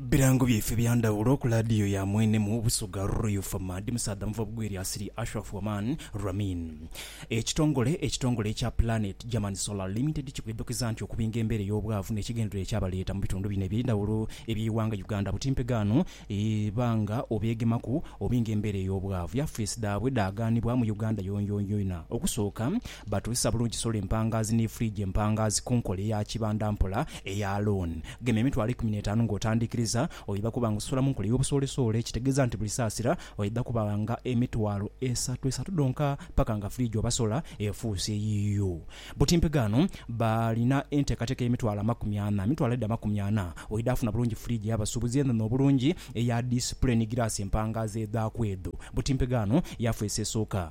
Birango byaife bya ndhawulo ku laadiyo ya mwene mu Busoga Royal Format musaadha muva bugwi erya Sri Ashraf Oman Ramin. Ekitongole ekitongole ekya Planet German Solar Limited kikwidhukiza nti okubinga embeera ey'obwavu n'ekigendererwa ekyabaleeta mu bitundu bino eby'endhawulo eby'eighanga Uganda butimpegaano eba nga obeegemaku obinga embeera ey'obwavu. Yafeesi dhaabwe dhaagaanibwa mu Uganda yonyoyoina okusooka Batuusa bulungi solo empangaazi ni furiji empangaazi ku nkola eya kibanda mpola eya loan. Gema emitwalo eikumi n'etaanu ng'otandiikiriza. Oidha kuba ng'ososola mu nkola ey'obusoolesoole ekitegeeza nti buli saasira oidha kuba nga emitwalo esatu esatu dhonka paka nga furiji oba sola efuuse yiyo. Butimpe ghano balina enteekateeka ey'emitwalo amakumi ana. Emitwalo edho amakumi ana oidha funa bulungi furiji ey'abasuubuzi enhenhe obulungi eya disipule ni giraasi empangaazi edhaaku edho. Butimpe ghano yafeesi esooka.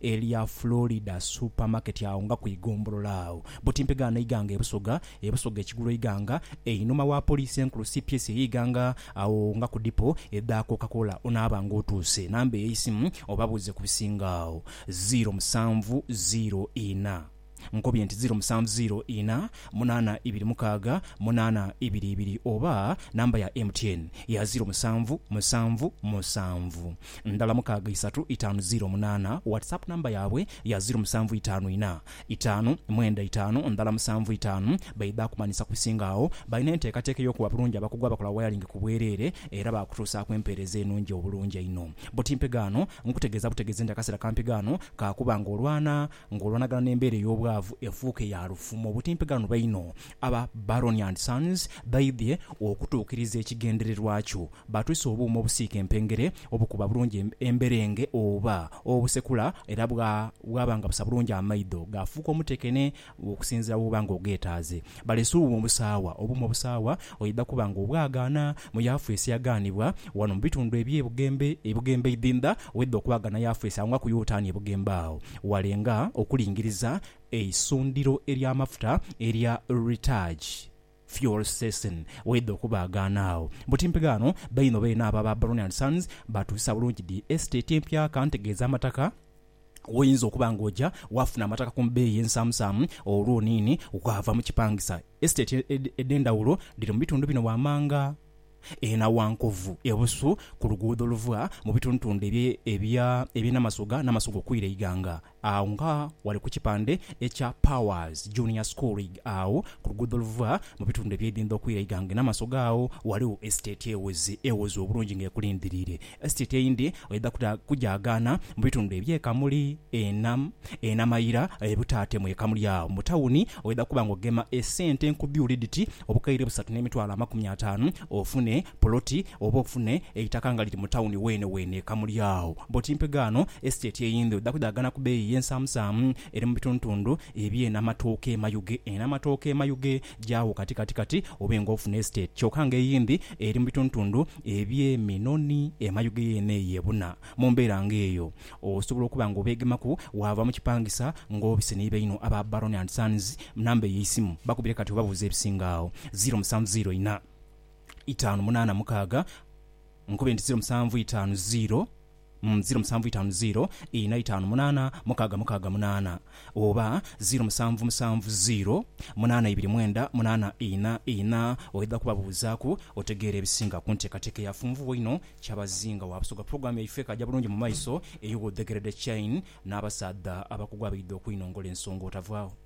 Elya Florida Supermarket agho nga ku igombolola agho buti mpegaano eighanga e Busoga, e Busoga ekigulu eighanga, einhuma wa Poliisi enkulu cps eye ighanga agho nga ku dipo edha Coca Cola onaaba nga otuuse. Namba eyeisimu obabuuze ku bisinga agho. Ziiro musanvu ziiro inha. Nkobye nti ziro musanvu ziro ina munana ibiri mukaaga munana ibiri ibiri oba namba ya MTN ya ziro musanvu musanvu musanvu ndala mukaaga isatu itaanu ziro munana WhatsApp namba yabwe ya ziro musanvu itaanu ina itaanu mwenda itaanu ndala musanvu itaanu baidha akumanhisa kubisinga agho balina enteekateeka eyokuwa bulungi abakugu abakola wayalingi kubwerere era bakutuusaaku empeereza enungi obulungi einho buti mpegaano nkutegeeza butegeezi nti akaseera kampegaano kakuba nga olwana Ng'olwanagana n'embeera ey'obwavu efuuke ya lufumo, obutimpeganhwa einho, aba Baroni and Sons baidhie okutuukiriza ekigendererwa kyo. Baatwise obuuma obusiika empengere obukuba bulungi emberenge oba obusekula era bwaba nga busa bulungi amaidho, gaafuuka omutekene okusinziira w'oba ng'ogeetaaze. Baleese obuuma obusaawa. Obuuma obusaawa Oidha kuba nga obwagaana mu Yaafeesi yagaanibwa ghano mu bitundu eby'e Bugembe, e Bugembe Idhindha, oidha okubaagana Yaafeesi agho nga ku Yoltaani e Bugembe agho walenga okulingiriza eisundhiro ery'amafuta erya Ritaj Fuel Station. Oidha okubaagaana agho. Mbu timpeghe ghano, bainho beene abo aba Baroni and Sons baatuusisa bulungi dhi estate empya, ka ntegeeze amataka w'oyinza okuba ng'oja waafuna amataka ku bbeeyi ensaamusaamu olwo niini waava mu kipangisa. Esiteeti edh'endhawulo dhiri mu bitundu bino wammanga e Nawankovu e Busu ku luguudo oluva mu bitundutundhu eby'e Namasoga, Namasoga okwira e Iganga agho nga ghali ku kipande ekya Powers Junior School agho ku luguudo oluva mu bitundhu eby'e Idhindho okwira e Iganga e Namasoga agho ghaligho esiteeti ewoze obulungi ng'ekulindhiriire. Esiteeti eyindi oidha kuta kujaagaana mu bitundu eby'e Kamuli, Ena, Ena Mayira, e Butaate mu e Kamuli agho. Mu tawuni oidha kuba ng'ogema esente nkubyuli dhiti obukaire busatu n'emitwalo amakumi ataanu ofune poloti oba ofune eitaka nga liri mu tawuni weene weene e Kamuli agho. Bw'oti mpegaano esiteeti eyindi oidha kujaagaana ku bbeeyi ey'ensaamusaamu eri mu bitundutundu eby'e Namatooke e Mayuge. Ena Matooke e Mayuge Gyawo kati kati kati obe nga ofuna estate kyoka nga eyindi eri mu bitundutundu ebye Minoni e Mayuge yeene eyo ebuna. Mu mbeera nga eyo, osobola okuba nga obeegemaku waava mu kipangisa nga obise ni baino aba Baroni and Sons. Namba eyo eisimu bakubire kati obabuuze ebisinga agho. Ziro musanvu ziro inha, itaanu munaana mukaaga, nkobe nti ziro musanvu itaanu ziro. ziro musanvu itaanu ziro ina itaanu munaana mukaaga mukaaga munaana oba ziro musanvu musanvu ziro munaana ibiri mwenda munaana ina ina oidha kubabuuzaaku otegeere ebisinga ku nteekateeka eyafunvubwa einho Kyabazinga wa Busoga Pulogulaamu yaife ekaaja bulungi mu maiso eyo w'odhekeredde Chain n'abasaadha abakugu abaidha okwinongola ensonga otavaagho.